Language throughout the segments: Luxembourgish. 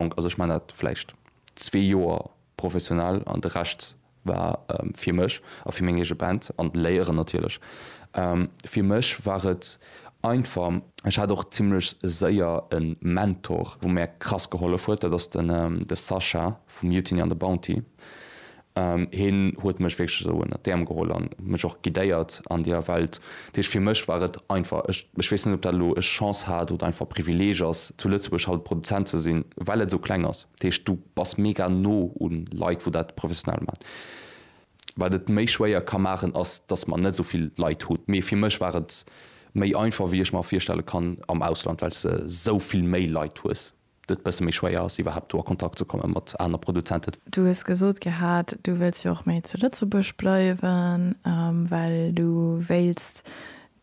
Onk, also ech man dat vläicht zwee Joer professionell an de Rescht war fir mech a fir meng eege Band an d'Léieren natierlech. Fir mech war et einfach. Ech hat och zimmlech séier e Mentor, wou mär krass gehollef huet, dat ass de Sascha vu Mutiny an de Bounty. Hien huet mech wierklech esou ënnert d'Äerm geholl an mech och guidéiert an deeër Welt. Dat heescht, fir mech war et einfach. Ech ech weess net, ob dat elo ech Chance hat oder einfach Privileeg ass, zu Lëtzebuerg haut Produzent ze sinn, well et esou kleng ass. Dat heescht, du bass mega no u Leit, wou dat professionell maachen. Wat et méi schwéier ka maachen, ass, dass mer net esou vill Leit hunn. Mee fir mech war et méi einfach, wéi ech mer virstelle kann am Ausland, well s de esou vill méi Leit hues. et e bësse méi schwéier ass, iwwerhaapt do a Kontakt ze komme mat aner Produzenten. Du hues gesot gehat, du wëlls jo och méi zu Lëtzebuerg bleiwen, well du wéilts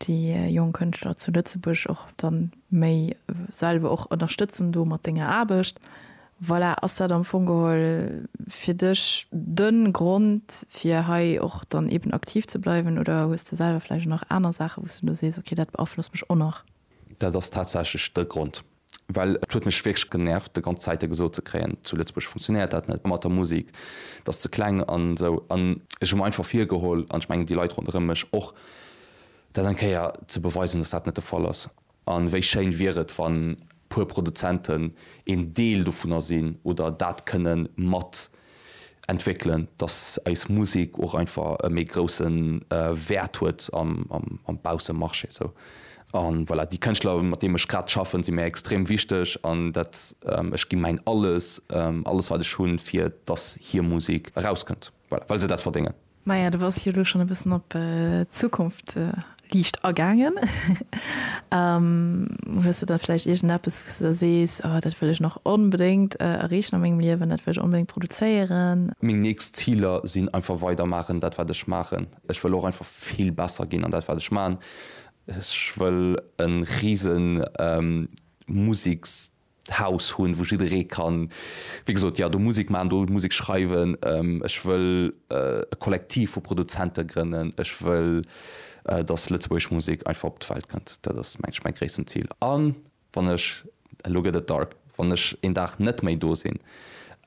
déi jonk Kënschtler zu Lëtzebuerg och dann méi selwer och ënnerstëtzen do mat denger Aarbecht. Voilà, ass dat am Fong geholl fir dech de Grond, fir hei och dann eeben aktiv ze bleiwen oder hues de selwer vläicht och nach aner Saachen, wou s de elo sees, okay, dat beaflosst mech och nach? Dat ass tatsächlech de Grond. Well et huet mech wierklech genervt de ganz Zäite gesot ze kréien, zu Lëtzebuerg funktionéiert dat net mat der Musik, dat ass ze kleng an esou. An ech hu mer einfach virgeholl, an ech mengen déi Leit ronderëm mech och, dat eng Kéier ze beweisen, dass dat net de Fall ass. A wéi schéin wier et, wann puer Produzenten een Deel dovunner sinn oder dat kënne mat entwéckelen, dass eis Musek och einfach e méi grousse Wäert huet am Baussemarché esou. An voilà, déi Kënschtler, mat deem ech grad schaffen, si mir extrem wichteg an dat, ech gi mäin Alles, alles wat ech hunn, fir dass hir Musek erauskënnt, voilà, well se dat verdéngen. Maja, du bass jo elo schonn e bëssen op d'Zukunft liicht agaangen. Hues de da vläicht iergendeppes, wou s de da sees, Oh, dat wëll ech nach onbedéngt erreechen a mengem Liewen, dat wëll ech onbedéngt produzéieren? Meng nächst Ziler sinn einfach weidermaachen, dat wat ech maachen. Ech wëll och einfach vill besser ginn an dat wat ech maachen. Ech wëll e rise Museksjob Haus hunn, wou jidderee kann, wéi gesot, jo, do Musek maachen, do Musek schreiwen. Ech wëll e Kollektiv vu Produzente grënnen. Ech wëll, datt lëtzebuergesch Musek einfach op d'Welt kënnt. Dat ass, mengen ech, mäi gréissten Zil. A wann ech, elo gëtt et dark, wann ech een Dag net méi do sinn,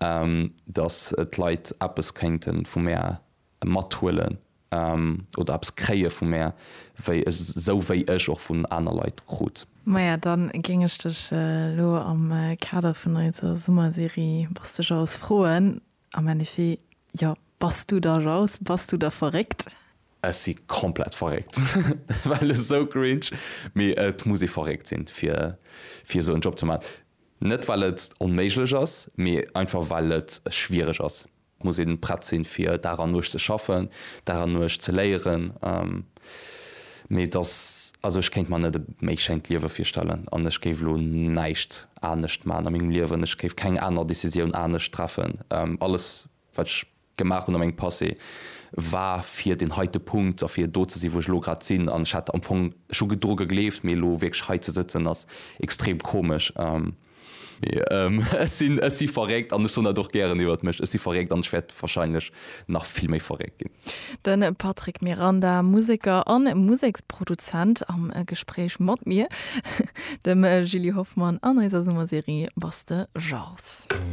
datt d'Leit eppes kéinte vu mär mathuelen oder eppes kréie vu mär, wéi esou wéi ech och vun aner Leit krut. Maja, dann géing ech dech elo am Kader vun eiser Summerserie Bass de Jaus? froen, am Ennefiet, jo, bass du da Jaus? Bass du da verréckt? Ech si komplett verréckt, well esou cringe, mee et muss ee verréckt sinn, fir fir esou en Job ze man. Net well et onméiglech ass, mee einfach well et schwiereg ass. Et muss een prett sinn, fir Dag an Nuecht ze schaffen, Dag an Nuecht ze léieren. Mee dass, also ech kéint mer net e méi schéint Liewe virstellen an ech géif elo näischt anescht maachen a mengem Liewen. Ech géif keng aner Decisioun anescht treffen. Alles, wat ech gemaach hunn a mengem Passé, war fir deen heite Punkt a fir do ze sinn, wou ech elo grad sinn. An ech hat am Fong, ech hu dru gegleeft, mee elo wierklech hei ze sëtzen, ass extrem komesch. Mee ech sinn, ech si verréckt an ech soen dat och gären iwwert mech, ech si verréckt an ech wäert wahrscheinlech nach vill méi verréckt ginn. De Patrick Miranda, Museker a Museksproduzent am Gespréich mat mir, dem Julie Hoffmann, an eiser Summerserie Was de jauchs.